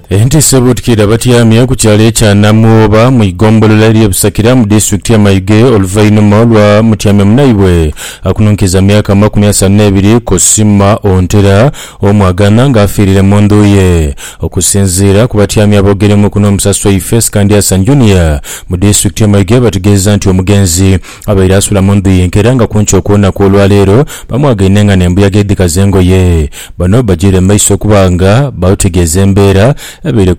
Entiisa ebuutikidde abatyamye ku kyalo ekya Namwoba mu igombolola ery'e Busakira mu disitulikiti y'e Mayuge oluvainhuma lwa mutyame munaibwe akununkiza myaka amakumi asanu n'ebiri Cosima Ontera Omwagana nga afiirire mu ndhu ye. Okusinziira ku batyami aboogeremuuku n'omusasi waifee Scandiasa Junior mu disitulikiti y'e Mayuge bategeezezza nti omugenzi Abaire asula mu ndhu ye nka era nga kunki okw'olunaku olwa leero bamwagaine nga n'embuyaga edhikaza engoye. Bano bajiire mu maiso okuba nga batutegeeza embeera ebaire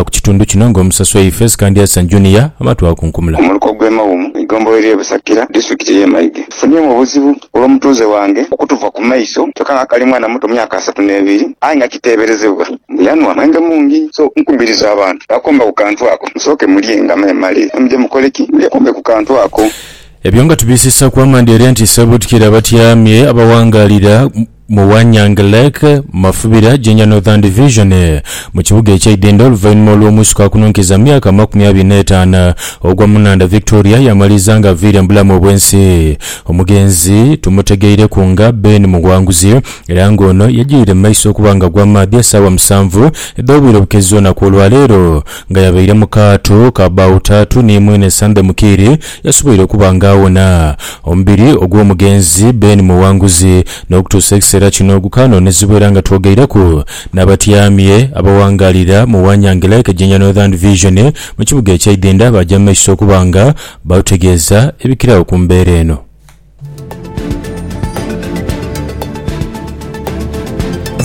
ku kitundu kino nga omusasi waifee Sikandi Hassan Junior amatwaakunkumula. Omuluka ogw'e Mawumu eigombolola ery'e Busakira, disitulikiti ey'e Maige, efunhyemu obuzibu olw'omutuuze wange okutuva ku maiso kyoka nga akali mwana muto myaka asatu n'ebiri aye nga kiteeberezebwa mbu yanhwa mwenge mungi. So nkubiriza abantu bakomba ku kantu ako musooke mulye nga mwemale then muje mukole ki? Mwekombe ku kantu ako. Ebyo nga tubisisaku amaani eri nti Ssebutukire abatyamye abawangaalira. mu Wanyang Lake, mu mafubira Jinja Northern Division, mu kibuga ekye Idinda oluvainhuma olw'omuisuka akununkiza mu myaka amakumi abiri n'etaanu ogwa mu nhandha Victoria yamaliza nga aviire mu bulamu obw'ensi. Omugenzi tumutegeireku nga Ben Muwanguzi era nga ono yajiire mu maiso okuba nga agwa mu maadhi esaawa musanvu edh'obwire obukezi olunaku olwaleero nga yabaire mu kaato ka baawo taatu ni mwine Sunday Mukiiri Yasoboire okuba nga awona omubiri ogw'omugenzi Ben Muwanguzi. N'okutuusa ekiseera kino gukaanoonezebwa era nga twogeireku n'abatyaami abawangaalira mu Wanyange Lake Jinja Northern Vision mu kibuga ekya Idhindha baaja mu maiso okuba nga batutegeeza ebikiragho ku mbeera eno.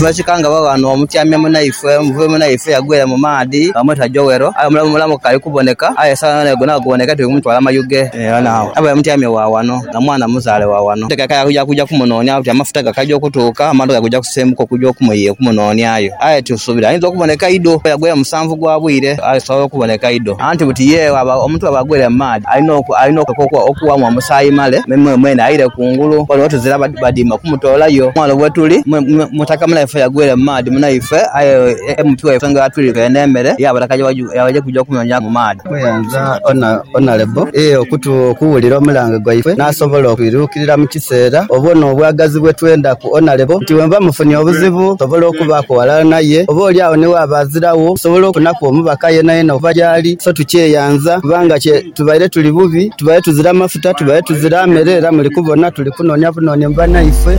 Mwekikanga baba ghano mutyamya munaifwe omuvubi munaifwe eyagwira mu maadhi bamweta Joel aye omulamu mulamu kukali kuboneka aye esawa yonayona egwe naguboneka aye tuli kumutwala mayuge yona agho abaire mutyamye wa ghano na mwana muzaale wa ghano tutegeka yakuja kuja kumunonia nti amafuta gakaja okutuuka amadhoka gaja kusenguka okuja okumunonia yo aye tusubira ayinza okuboneka idho kuba yagwire musanvu. ogwa bwire asobola okuboneka einho. Anti buti ye bwaba omuntu bwaba agwire mu maadhi alina okuleka okughamu omusaayi male mwene aire kungulu ghano tuzira badima kumutoolayo. Ghano wetuli mutaka munaife yagwire mu maadhi munaife aye emutwe ensonga yatwirika eno emere yabaleka yaja kuja okunonyaku mu maadhi. Muyanza Onalebo ee okutugha okuwulira omulange gwaife n'asobola okwiruukirira mu kiseera oba ono obwagazi bwe twendaku. Onalebo nti bwenva mufunye obuzibu nsobola okubaaku ghalala naye oba oli agho ni waaba aziragho nsobola okufunaku omubaka yenayena okuva gyali. So tukyeyanza kubanga kye tubaire tuli bubi, tubaire tuzira mafuta, tubaire tuzira mere era muli kubona tuli kunoonia bunoonie mu banaife.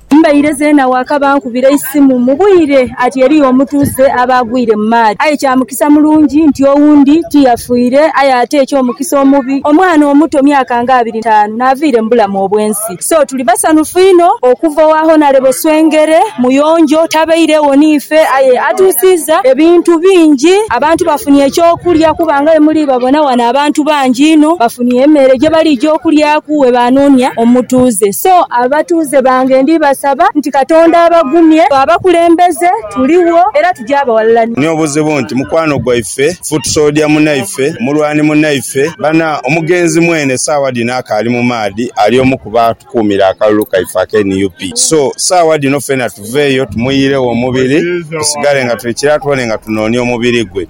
Mbaire zeena waakaba ankubira eisimu mu bwire ati eriyo omutuuze aba agwire mu maadhi. Aye kya mukisa mulungi nti owundi ti yafiire, aye ate eky'omukisa omubi, omwana omuto myaka nga abiri n'etaanu n'aviire mu bulamu obw'ensi. So tuli basanhufu inho okuva owa Honourable Swengere, muyonjo, tabairegho n'ife aye atuusiiza ebintu bingi. Abantu bafunye eky'okulya kuba nga bwe muli babona ghano abantu bangi inho bafunye emeere gye baliija okulyaku we baanoonia omutuuze. So abatuuze. bakozi bange ndi basaba nti Katonda abagumye. Ffe abakulembeze tuligho era tugya abawalilania. Ni obuzibu nti mukwano gwaife, foot soldier munaife, mulwani munaife, bana omugenzi mwene saawa dhino akaali mu maadhi ali omu ku batukuumira akalulu kaife aka nup. So saawa dhino ffena tuveeyo tumuyiiregho omubiri tusigale nga tuli kira twone nga tunoonia omubiri gwe.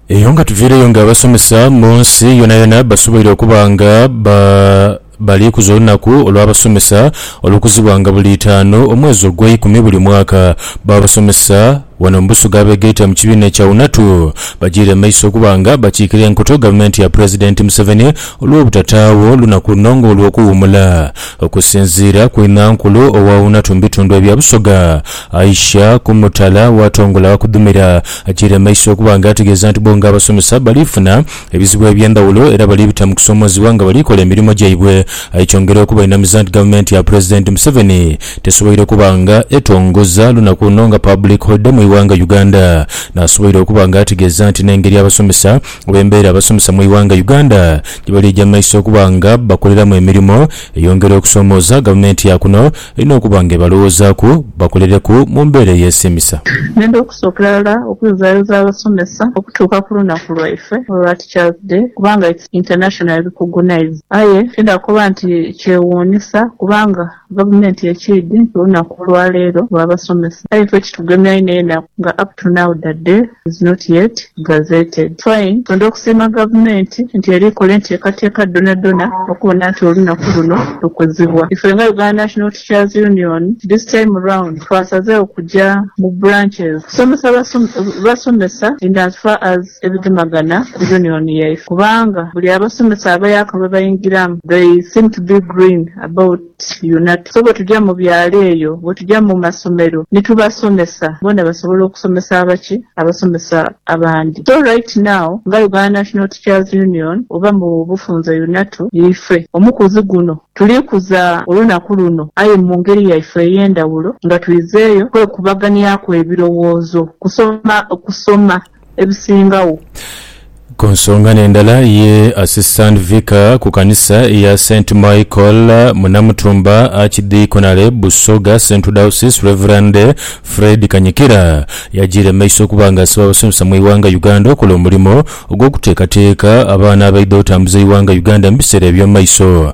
Eyo nga tuviireyo nga abasomesa mu nsi yonayona basoboire okuba nga ba. Baliikuza olunaku olw'abasomesa olukuzibwanga buli itaanu omwezi ogweikumi buli mwaka. Bo abasomesa wano mu Busoga abegaita mu kibiina kya UNATU bajiire mu maiso okuba nga bakiikira enkoto gavumenti ya pulezidenti Museveni olw'obutataagho lunaku luno nga olw'okuwuumula. Okusinziira ku inhankulu owa UNATU mu bitundu ebya Busoga, Aisha Kumutala, bwatongola wakudhumira, ajiire mu maiso okuba nga ategeeza nti bo nga abasomesa balifuna. ebizibu eby'endhawulo era bali bita mu kusoomoozebwa nga bali kola emirimo gyaibwe. Aye kyongera okubainamiza nti gavumenti ya Pulezidenti Museveni tesoboire okuba nga etongoza lunaku luno nga Public Holiday mu ighanga Uganda, n'asoboire okuba nga ategeeza nti n'engeri abasomesa oba embeera abasomesa mu ighanga Uganda gye bali eja mu maiso okuba nga bakoleramu emirimo eyongera okusoomooza gavumenti ya kuno. Balina okuba nga ebalowozaaku bakolereku mu mbeera eyeesiimisa. Ngenda okusookera ghala okuyozaayoza abasomesa okutuuka ku lunaku lwaife olwa Teachers Day kubanga it's internationally recognised. Aye tiidha kukoba nti kyewuunhisa kubanga gavumenti ekiidhi nti olunaku olwaleero lwa basomesa aye ffe kitugemya inho enaku nga up to now the day. is not yet gazetted. Fine, twendha okusiima gavumenti nti era ekola enteekateeka dhonadhona okubona nti olunaku luno lukuzibwa. Ife nga Uganda National Teachers Union, this time round twasazegho kuja mu branches kusomesa basomesa in as far as ebigemagana ku union yaife kubanga buli abasomesa abayaka lwebaingiramu they seem to be green about. Yona. So bwetuja mu byalo eyo, bwetuja mu masomero ni tubasomesa, bona basobola okusomesa abaki? Abasomesa abandi. So right now nga Uganda National Teachers Union oba mu bufunze UNATU, ife omukuzi guno tuli kuza olunaku luno aye mu ngeri yaife ey'endhawulo nga twizeeyo kwekubaganiaku ebirowoozo kusoma kusoma ebisingagho. Ku nsonga n'endala ye Assistant Vicar ku kanisa eya Saint Michael mu Namutumba Archdeaconry Busoga Central Diocese Rev. Fred Kanyikira yajiire mumaiso okuba nga asaba abasomesa mu ighanga Uganda okola omulimo ogw'okuteekateeka abaana abaidha otambuza eighanga Uganda mu biseera eby'omumaiso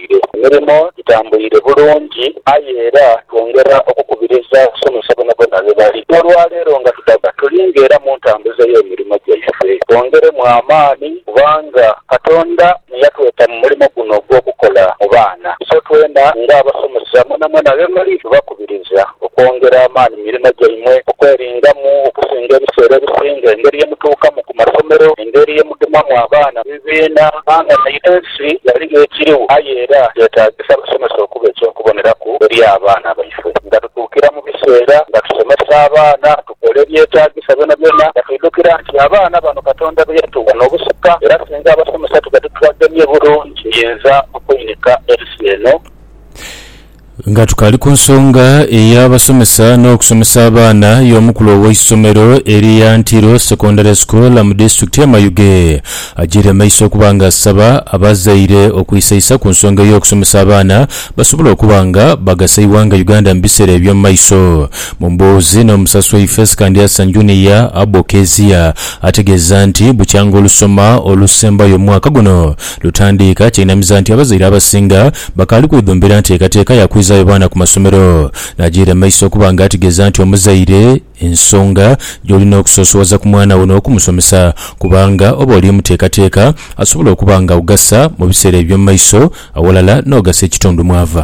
bwire. Emirimo gitambwire bulungi aye era twongera okukubiriza abasomesa bonabona be bali. N'olwaleero nga tudaba tuli ng'era mu ntambuza ey'emirimo gyaife, twongeremu amaani kubanga Katonda ni yatweta mu mulimo guno ogw'okukola mu baana. So twena ng'abasomesa mwenamwena ghe muli tubakubiriza okwongera amaani mu mirimo gyaimwe, okweringamu okusinga ebiseera ebisinga, engeri ye mutuukamu ku masomero, engeri ye mudhumamu abaana mu bibiina, kubanga naidho Ensi yali n'ekiriwo, aye era kyetaagisa abasomesa okuba eky'okuboneraku eri abaana baife. Nga tutuukira mu biseera nga tusomesa abaana, tukola ebyetaagisa byonabyona nga twidhukira nti abaana bano Katonda be yatuwa n'obusika era singa abasomesa tuba titubagemye bulungi, tuinza okweinika ensi eno. Nga tukaali ku nsonga ey'abasomesa n'okusomesa abaana y'omukulu ow'eisomero erya Ntiro Secondary School mu disitulikiti ye Mayuge agyiire mu maiso okuba nga asaba abazaire okwisaisa ku nsonga ey'okusomesa abaana basobole okuba nga bagasa eighanga Uganda mu biseera eby'omu maiso. Mu mboozi n'omusasi waife Sikandyasa Junior, Abbo Kezia ategeeza nti bukyanga olusoma olusembayo mu mwaka guno Lutandiika kyeinamiza nti abazaire abasinga bakaali kwedhombera nteekateeka ya kwizaayo baana ku masomero, n'agiira mu maiso okuba nga ategeeza nti omuzaire ensonga gy'olina okusoosowaza ku mwana wo n'okumusomesa kubanga oba oli muteekateeka asobola okuba nga augasa mu biseera eby'omu maiso awalala n'ogasa ekitundu mw'ava.